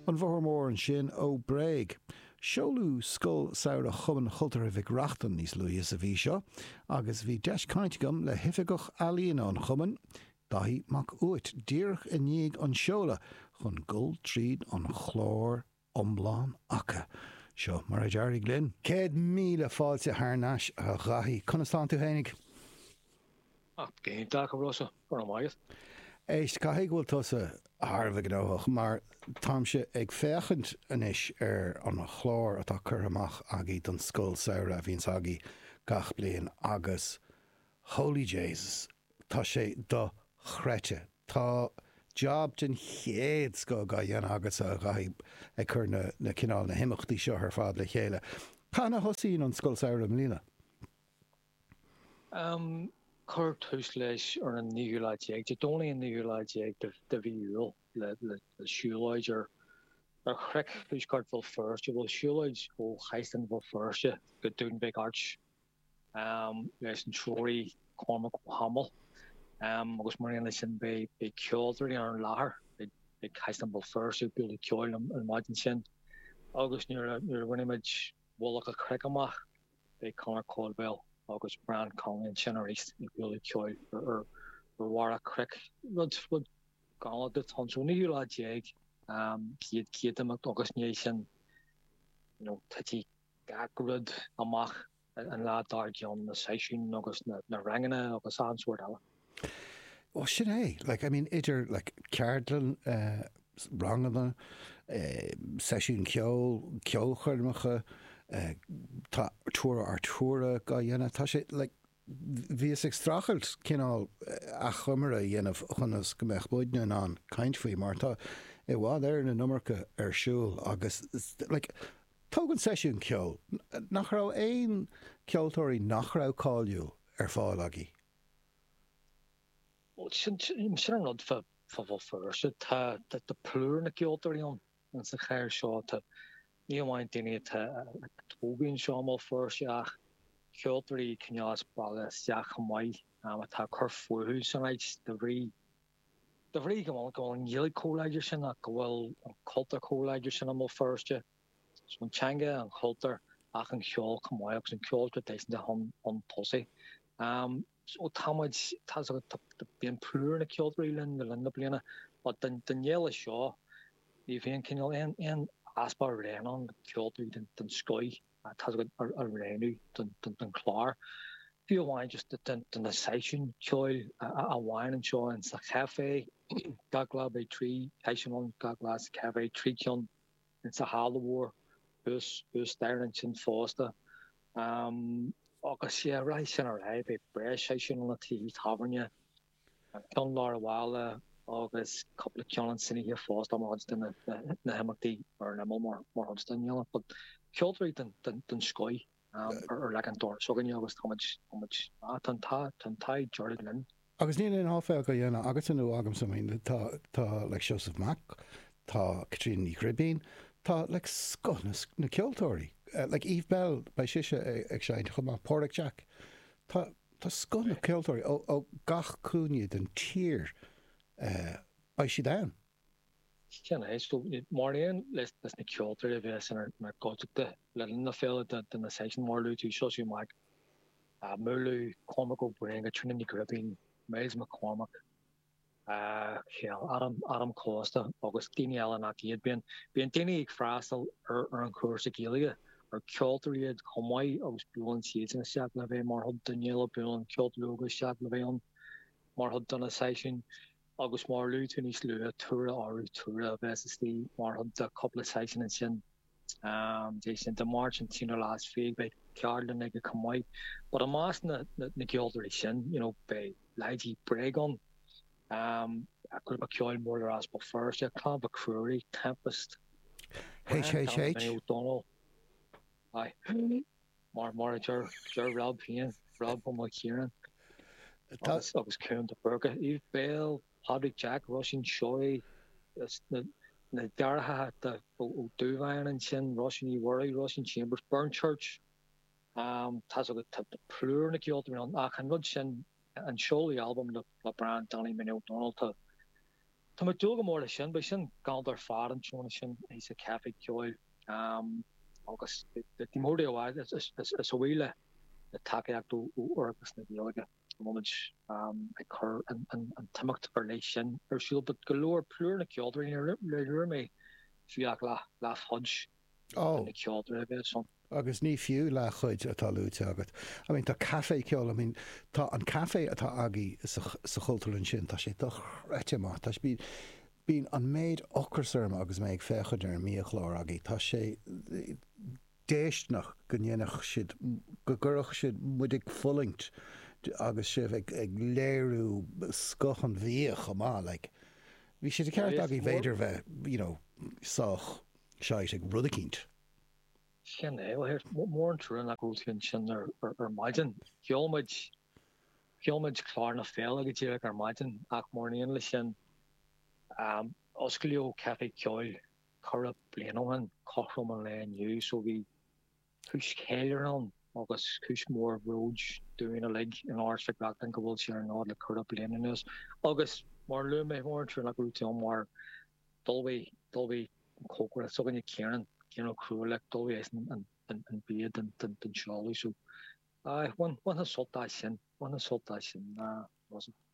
An Bóthar Mór ansin ó Bréag. Seoladh Scoil Samhraidh Chumann Chultúrtha Mhic Reachtain níos luaithe sa mhí seo agus bhí deis cainte agam le hOifigeach Ealaíona an Chumainn, Daithí Mac Uait, díreach i ndiaidh an tseolta chun dul tríd an chlár iomlán aca. Seo mar a d'éirigh linn. Céad míle fáilte thar n-ais, a Dhaithí. Conas atánn tú féinig? Ach go hiontach, a Rossa. Go raibh maith agat. Éist, caithfidh go bhfuil tusa thar a bheith gnóthach, mar táimse ag féachaint anois ar an chlár atá curtha amach agaí don Scoil Samhraidh a bhíonns agaí gach bliain agus Holy Jaysus, tá sé do-chreidte. Tá job den chéad scoth dhá dhéanamh agatsa a Dhaithí, ag cur na cineál imeachtaí seo ar fad le chéile. Cathain a thosaíonn an Scoil Samhraidh i mbliana? Cuirfear tús leis ar an naoú lá déag, Dé Domhnaigh an naoú lá déag de mhí Iúil, le siúlóid ar chnoic thuaisceart Bhéal Feirste, bhuel, siúlóid ó Chaisleán Bhéal Feirste go Dún Mhic Airt. leis an treoraí Cormac Ó hAdhmaill agus mar aon leis sin beidh ceoltóirí ar an láthair, ag Caisleán Bhéal Feirste ag bualadh ceoil an mhaidin sin agus nuair a bhainimid Mullach a' Chnoic amach beidh Conor Caldwell agus Brian Connolly ansin arís ag bualadh ceoil ar bharr a' chnoic, rud galánta ton show, 19ú lá, an chéad chéad imeacht agus i ndiaidh sin you know titfidh. gach rud amach ón lá dár gcionn, na seisiúin agus na ranganna agus achan sórt eile. Bhuel sin é, like, I mean idir like ceardlann, ranganna, seisiúin ceoil, ceolchoirmeacha, tá tour Ard Rí tour dhá dhéanamh, tá sé like, Bhíos ag streachailt cineál achoimre a dhéanamh conas go mbeadh muid in ann caint faoi mar tá i bhfad ar na n-iomarca ar siúl agus like tóg an seisiún ceoil nach raibh aon ceoltóirí nach raibh cáiliúil ar fáil agaí. Bhuel sin an rud fá Bhéal Feirste. Tá plúr na gceoltóirí ann. Ins an chathair seo tá ní amháin daoine atá tógtha anseo i mBéal Feirste ach ceoltóirí cineál as baile isteach chomh maith atá ag cur fúthu san áit de bhrí de bhrí go bhfuil an Ghaeilge chomh láidir sin ach go bhfuil an cultúr chomh láidir sin i mBéal Feirste. So an teanga, an cultúr ach an ceol chomh maith agus an ceol traidisiúnta chun tosaigh. So táimid, tá's agat, bíonn plúr na ceoltóirí linn le linn na bliana but don fhéile seo ní bhíonn cineál aon easpa orainn ann ceoltóirí den scoith tá's agat a roghnú don chlár. Fiú amháin just do na seisiúin cheoil amháin anseo sa chaifé gach lá beidh trí sheisiún ann gach lá sa chaifé trí cheann in sa halla mhór thuas thuas staighre ansin fosta. Agus sea, rachaidh sin ar aghaidh, beidh breis seisiúin ann i tithe tábhairne, ceann i lár an bhaile agus cúpla ceann in san oíche fosta mar chuid de na himeachtaí ar an imeall mar chuid den fhéile. But ceoltóirí den scoith. ar leac an dorais againne agus táimid, táimid, ah, tá an t-ádh, tá an t-ádh dearg linn. Agus níl aon áiféal dhá dhéanamh agatsa nó agamsa, I mean, tá, tá, like, Seosamh Mac, tá Caitríona Ní Ghribín, tá, like, scoth na, na ceoltóirí, like, Eve Belle, beidh sise ag seinnt chomh maith, Pádraig Jack, tá, tá scoth na ceoltóirí ó, ó gach cúinne den tír, eh, beidh siad ann. Sin é. So, mar aon leis na ceoltóirí a bhéas inár gcuideachta le linn na féile do na seisiúin mar a luaigh tú, Seosamh Mac Maoileoidh, Cormac Ó Briain, Caitríona Ní Ghribín, Myles McCormack, Cheil Adam, Adam Costa agus daoine eile nach iad, bíonn bíonn daoine ag freastal ar ar an chúrsa Gaeilge ar ceoltóirí iad chomh maith agus buaileann siadsan isteach le bheith mar chuid den fhéile, buaileann ceoltóirí óga isteach le bheith ann mar chuid de na seisiúin. Agus mar luaigh tú níos luaithe, Tura Arutura a bheas istigh mar chuid de chúpla seisiún ansin. Dé sin, Dé Máirt an t-aonú lá is fiche, beidh ceardlann aige chomh maith. But i measc na gceoltóirí sin, you know, beidh leithéidí Bréag ann, grúpa ceoil mór le rá as Béal Feirste, Clann Mhic Ruairí, Tempest, Brian Danny Ó Dónaill, aye. mar mar a deir deir Rob féin, Rob Ó Mac Ciaráin agus agus Ciarán de Búrca, Eve Belle, Pádraig Jack, Róisín Seoighe is na na deartháireacha Ó Ó Dúbháin ansin, Róisín Uí Mhuirí, Róisín Chambers, Burnchurch, tá's agat tá plúr na ceoltóirí ann ach an rud sin an seoladh albaim le Brian Danny Minnie Ó Dónaill Tá mé ag dúil go mór leis sin beidh sin galanta ar fad an tráthnóna sin sa Café Ceoil agus ar ndóigh arís a bhuí le le tacaíocht ó Fhoras na Gaeilge a bhfuil muid ag cur an t-imeacht ar leith sin ar siúl but go leor plúr na ceoltóirí níor luaigh mé fiú ach leathchuid Ó. An ceoltóir a bheas ann? Agus ní fiú leathchuid atá luaite agat. I mean tá caife ceoil, I mean tá an caife atá agaí sa Chultúrlann sin, tá sé dochreidte maith. Tá sé, bíonn an méid ocras orm agus mé ag féachaint ar an mbiachlár agaí. Tá sé déisteanach go ndéanfadh siad, go gcuirfeadh siad muid ag fulaingt agus sibh ag léiriú scoth an bhia chomh maith. Like, bhí sé de cheart agaí b'fhéidir bheith, you know, sách. sáite ag rud eicínt. Sin é. Bhuel, is mór an trua nach raibh tú ansin ar maidin. Sheol muid, sheol muid clár na féile go díreach ar maidin ach mar aon leis sin, osclaíodh Caife Ceoil corradh bliain ó shin, cothrom an lae inniu, so bhí, Cúis cheiliúrtha agus cúis mhór bhróid dúinn uilig in Áras Mhic Reachtain go bhfuil sé ar an fhód le corradh bliana anuas agus mar a luaigh mé mór an trua nach raibh tú ann mar d'ullmhaigh, d'ullmhaigh an cócaire s'againne Ciarán, Ciarán Ó Cruadhlaoich, d'ullmhaigh eisean an bia don seoladh so aye bhainfeá sult as sin, bhainfeá sult as sin.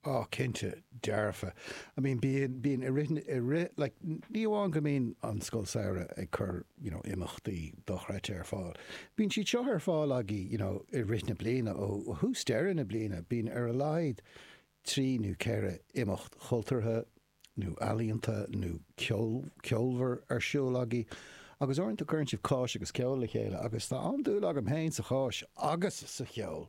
Á, cinnte, dearfa. I mean, bíonn, bíonn, i rith na, i rith, like, ní amháin go mbíonn an Scoil Samhraidh ag cur, you know, imeachtaí dochreidte ar fáil, bíonn siad seo ar fáil agaí, you know, i rith na bliana, ó thús deireadh na bliana, bíonn ar a laghad trí nó ceithre imeacht chultúrtha nó ealaíonta nó ceol, ceolmhar ar siúl agaí. Agus uaireanta cuireann sibh cáis agus ceol le chéile agus tá an-dúil agam féin sa cháis agus sa cheol!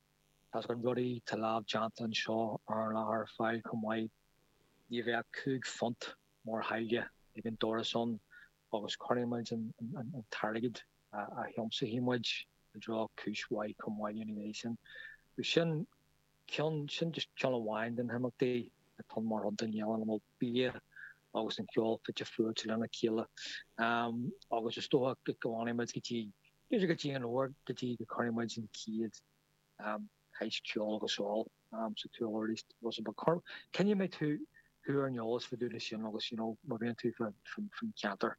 Tá na rudaí tá lámhdhéanta anseo ar an láthair ar fáil chomh maith. Ní bheidh ach cúig phunt mar tháille ag an doras ann agus cuirfimid an t-airgead a thiomsaigfidh muid i dtreo cúis mhaith chomh maith ina dhiaidh sin. Sin ceann, sin just ceann amháin de na himeachtaí atá mar a dtéann an bia agus an ceol fite fuaite lena chéile. Agus is dócha go bhfanfaidh muid go dtí B'fhéidir go dtí an uair go dtí go gcuirfidh muid an chéad cháis is ceol ar siúl arís Rossa but coinneoidh mé tú, thú ar an eolas fa dtaobh de sin agus you know má bhíonn tú fan cheantar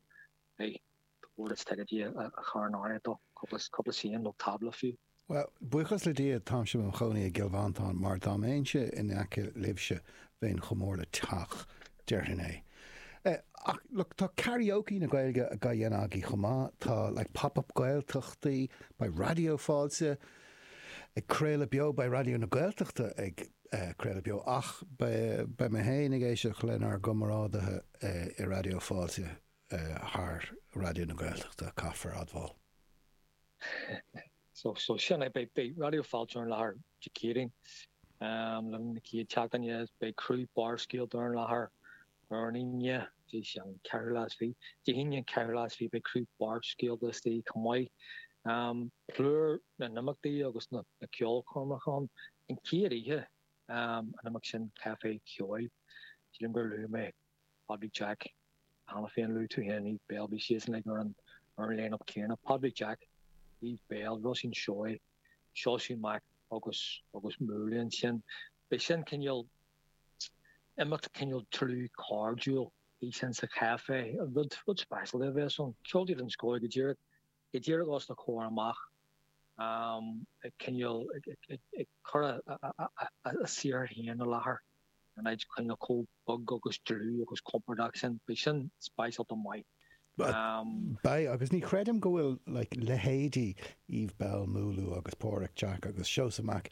hey tá, ticéid a chur in áirithe duit, cúpla ceann nó tábla fiú. Bhuel, buíochas le Dia táimse i mo chónaí i gCill Mhantáin mar dá mbeinnse in aice libhse bheinn chomh mór le teach déarfainn é. Ach look, tá karaoke na Gaeilge dhá dhéanamh agaí chomh maith, tá like Pop-Up Gaeltachtaí, beidh Raidió Fáilte ag craoladh beo, beidh Raidió na Gaeltachta ag craoladh beo ach beidh mé féin ag éisteacht lenár gcomrádaithe i Raidió Fáilte thar Raidió na Gaeltachta, caithfear admháil. So sin é. Beidh Raidió Fáilte ar an láthair Dé Céadaoin, Luan na chéad tseachtaine agus beidh criú Barrscéalta ar an láthair ar an Aoine, Dé hAoine an ceathrú lá is fiche beidh criú Barrscéalta istigh chomh maith. Plúr na n-imeachtaí agus na ceolchoirmeacha ann. An chéad oíche an imeacht sin Caifé Ceoil. Sílim gur luaigh mé. Padraig Jack, Cheana féin luaigh tú féin Eve Belle, beidh siadsan uilig ar an line-up céanna. Padraig Jack, Eve Belle, Róisín Seoighe, Seosaí Mac agus agus Múlú ansin. Beidh sin cineál imeacht cineál dlúth cairdiúil. Beidh sin sa chaifé. Rud rud speisialta a bheas ann. Ceoltóirí den scoth go díreach. go díreach os do chomhair amach, cineál ag cur a saothar féin i láthair in áit cineál chomh beag agus dlúth agus compordach sin, beidh sin speisialta maith. Beidh, agus ní chreidim go bhfuil like leithéidí Eve Belle, Múlú agus Páraic Jack agus Seosamh Mac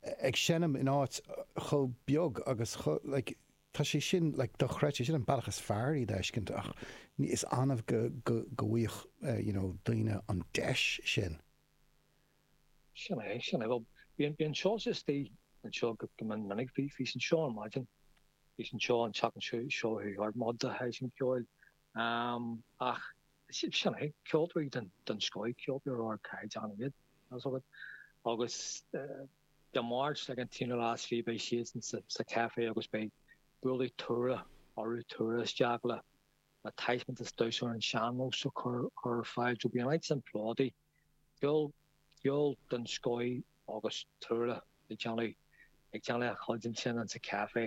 ag seinm in áit chomh beag agus chomh like. Tá sé sin, like, dochreidte. Sin an bealach is fearr iad a fheiscint ach ní, is annamh go, go, go bhfaigheann eh, you know, daoine an deis sin. Sin é, sin é. Bhuel, bhí an, bhí an Seosaí istigh anseo go, go min, minic. Bhí, bhí sé anseo ar maidin, bhí sé anseo an tseachtain seo, seo chuaigh thart, mo de shaghas an cheoil. Am, ach si, sin é, ceoltóirí den, den scoith, ceoltóirí ar ardchaighdeán iad, tá 'fhios agat. Agus eh. Dé Máirt seo an t-aonú lá is fiche beidh siadsan sa café agus beidh buailfidh Tura Arutura isteach le taispeántas damhsa ar an sean-nós a chur ar fáil. So beidh an áit sin plódaithe, ceol, ceol den scoith agus Tura ag déanamh, ag déanamh a chuid ansin insa café.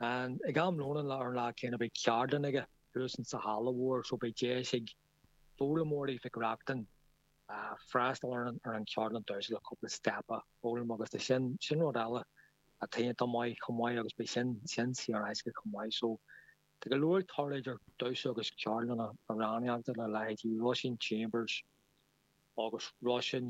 An, ag am lóin an lá, ar an lá céanna beidh ceardlann aige thuas insa halla mhór so beidh deis ag foghlaimeoirí Mhic Reachtain, freastal ar an Cheardlann Damhsa le cúpla step a fhoghlaim agus tá sin sin rud eile atá iontach maith chomh maith agus beidh sin sin saor in aisce chomh maith. So tá go leor ag tarlú idir damhsa agus ceardlanna amhránaíochta le leithéidí Róisín Chambers agus Róisín